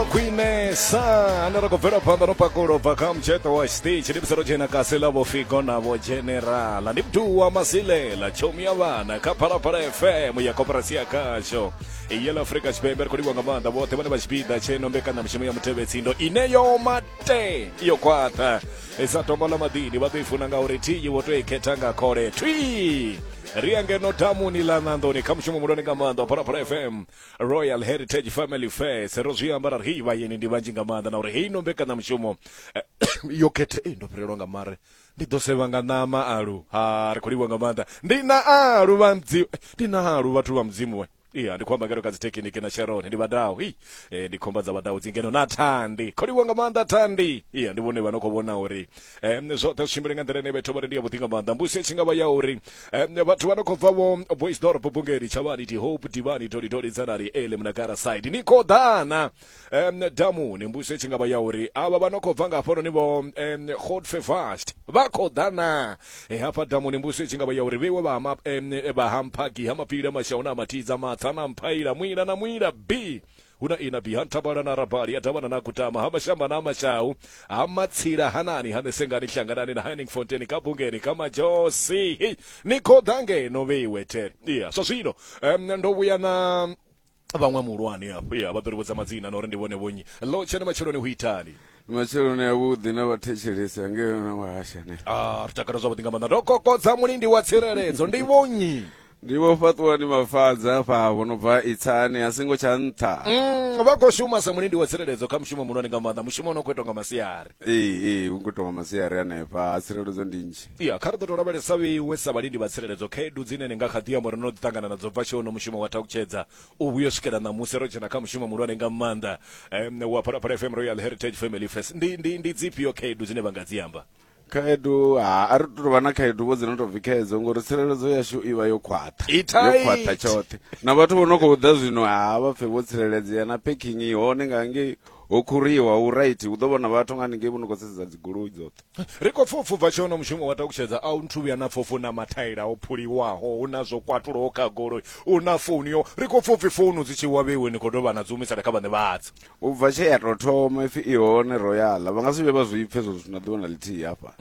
khwine sa ane ra khou bvela phanḓa no pakulo bva kha mutsheṱo wa stage ndi musero dzhena kasi ḽa vhofigo na vho generala ndi mduwa masilela tshomi ya vhana kha phalaphala fm ya koperasi ya khasho yela afrika tshipembe ri khou livhiwa nga maanḓa vhoṱhe vhane vha tshipiḓa tsheno mbekanyamushumo ya muthevetsindo ine yo mate yo khwaṱha sa tombo ḽa maḓini vha ḓo i funa ngauri thiyi wo to i khetha nga khole thwi ri ya ngeno damuni ḽa ṋanḓoni kha mushumo mulwane nga maanḓa wa phalaphala fm royal heritage family fair sero zwi amba ra ri hei vhayeni ndi vhanzhi nga maanḓa na uri heino mbekanyamushumo eh, yo khethe ei ndo fhelelwa nga mare ndi ḓo sevha nga ṋama alu ha ri khou livhiwa nga maanḓa ndi na alu vha mudzimu eh, ndi na alu vhathu vha mudzimu we iya ndi khou amba ngeno kha dzithekiniki na sharon ndi vhadau hi eh, ndi khomba dza vhadau dzi ngeno na thandi khou livhiwa nga maanḓa thandi iya ndi vhone vha no khou vhona uri eh, zwoṱhe zwi tshimbile nga nḓila ine vhethu vha ri ndi ya vhuḓi nga maanḓa mbusi i tshi nga vha ya uri um, vhathu vha no khou bva vho boisdorp bungeli tshavhani tihope divani tolitoli dzanari ele munakara side ni khou ḓana um, damuni mbuso tshi nga vha ya uri avha vha no khou bva nga hafhanoni vho um, hot fevast vha khou ḓana e, hafha damuni mbuso tshi nga vha ya uri vheiwe vha um, vha hampagi ha mapfila mashau na matidza matsa na mphaila mwila na mwila b Hu na Ina, Biha, Nthabala na Rabali, ha Davhana na Gutama, ha Mashamba na Mashau, ha Matsila, ha Nani, ha Nesengani, Hlanganani na Henningfonteni, ka Bungeni, ka Majosi. Hei, ni khou ḓa ngeno vhe iwe the. Iya, zwa zwino em, ndo vhuya na vhaṅwe muhulwane afho. Iya, vha ḓo ri vhudza madzina na uri ndi vhone vhonnyi. Ḽo tshena matsheloni hu itani? Ndi matsheloni a vhuḓi na vhathetshelesi angei na wahasha ne ah ri takala zwavhuḓi nga maanḓa ndo kokodza mulindi wa tsireledzo ndi vhonyi ndi vho fhaṱuwani mafadza afha vho no bva itsani a singo tsha nṱha Mm, vha khou shuma sa mulindi wa tsireledzo kha mushumo muhulwane nga maanḓa mushumo une u khou itwa nga masiari ee ee hu khou tonga masiari hanefha a tsireledzo ndi nzhi ya kha ri ḓo tou lavhelesa vheiwe sa vhalindi vha tsireledzo khaedu dzine ni nga kha ḓi amba uri no ḓi ṱangana nadzo bva tshe uno mushumo wa thakhutshedza u vhuya u swikela ṋamusi ro dzhena kha mushumo muhulwane nga maanḓa um, wa phalaphala fm royal heritage family fest ndi, ndi, ndi dzifhio khaedu dzine vha nga dzi amba khaedu ha a ri tou vha na khaedu vho dzi no tou bvi khaedzo ngori tsireledzo yashu i vha yo khwaṱha I tight. yo khwaṱha tshoṱhe na vhathu vho no khou ḓa zwino ha vha pfe vho tsireledzea na packing i hone nga ngei ho khuriwa hu right hu ḓo vhona vhathu nga haningei vho no khou sedza dzigoloi dzoṱhe Ri khou pfa upfubva tshono mushumo wa takutshedza a u nthu vhuya na pfofu na mathaila o phuliwaho hu na zwo kwatuloho kha goloi u na founu yo ri khou pfopfi founu dzi tshi wa vheiwe ni khou dovha na dzi humisela kha vhaṋe vhadzo u bva tshe ya to thoma ipfi i hone royal vha nga si vhe vha zwi pfe zwo na ḓuvha na ḽithihi hafha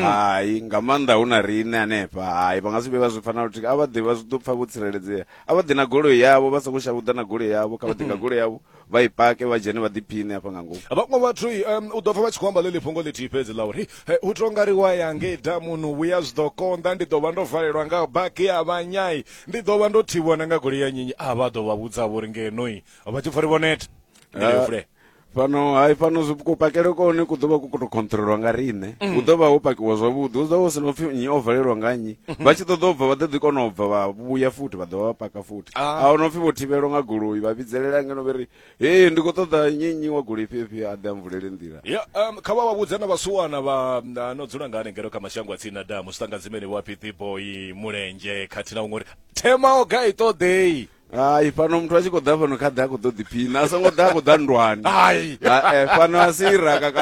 hai nga maanḓa hu na riṋe hanefha hai vha nga si vhe vha zwi pfa na luthihi a vha ḓi vha zwi ḓo pfa vho tsireledzea a vha ḓi na goloi yavho vha songo shavhuḓa na goloi yavho kha vha ḓi nga goloi yavho vha i pake vha dzhene vha ḓiphiṋe hafha nga ngomu vhaṅwe vhathu um, u ḓo pfa vha tshi khou amba ḽeḽi fhungo ḽithihi fhedzi ḽa uri u to nga ri wa ya ngei damuni u vhuya zwi ḓo konḓa ndi ḓo vha ndo valelwa nga baki ya vhanyai ndi ḓo vha ndo thivhiwa na nga goloi ya nyinyi a vha ḓo vha vhudza vho ri ngenoi vha tshi pfa ri vhoneta ndi yo fule fhano hai fhano kupakele kone ku ḓovha ku khou tou controlwa nga riṋe mm. hu ḓo vha ho pakiwa zwavhuḓi hu ḓo vha hu si na upfhi nnyi o valelwa nga nnyi vha tshi ṱoḓa u bva vha ḓo ḓi kona u bva vha vhuya futhi vha ḓovha vha paka futhi a hu no pfi vho thivhelwa nga goloi vha vhidzelela ngeno vhe ri hei ndi khou ṱoḓa nnyi wa goloi fhefhio a ḓe a mvulele nḓila ya um, kha vha vha vhudze na vhasuwana vha na- no dzula nga hanengelo kha mashango a tsini na damu zwi ṱanga dzimeni vho aphithi boyi mulenzhe khathihi na huṅwe uri themao ga i ṱoḓei hai fhano muthu a tshi khou ḓa fhano kha ḓe a khou ḓo ḓiphina a songo ḓa a khou ḓa ndwani hai Hai, eh, fhano a si iraka kana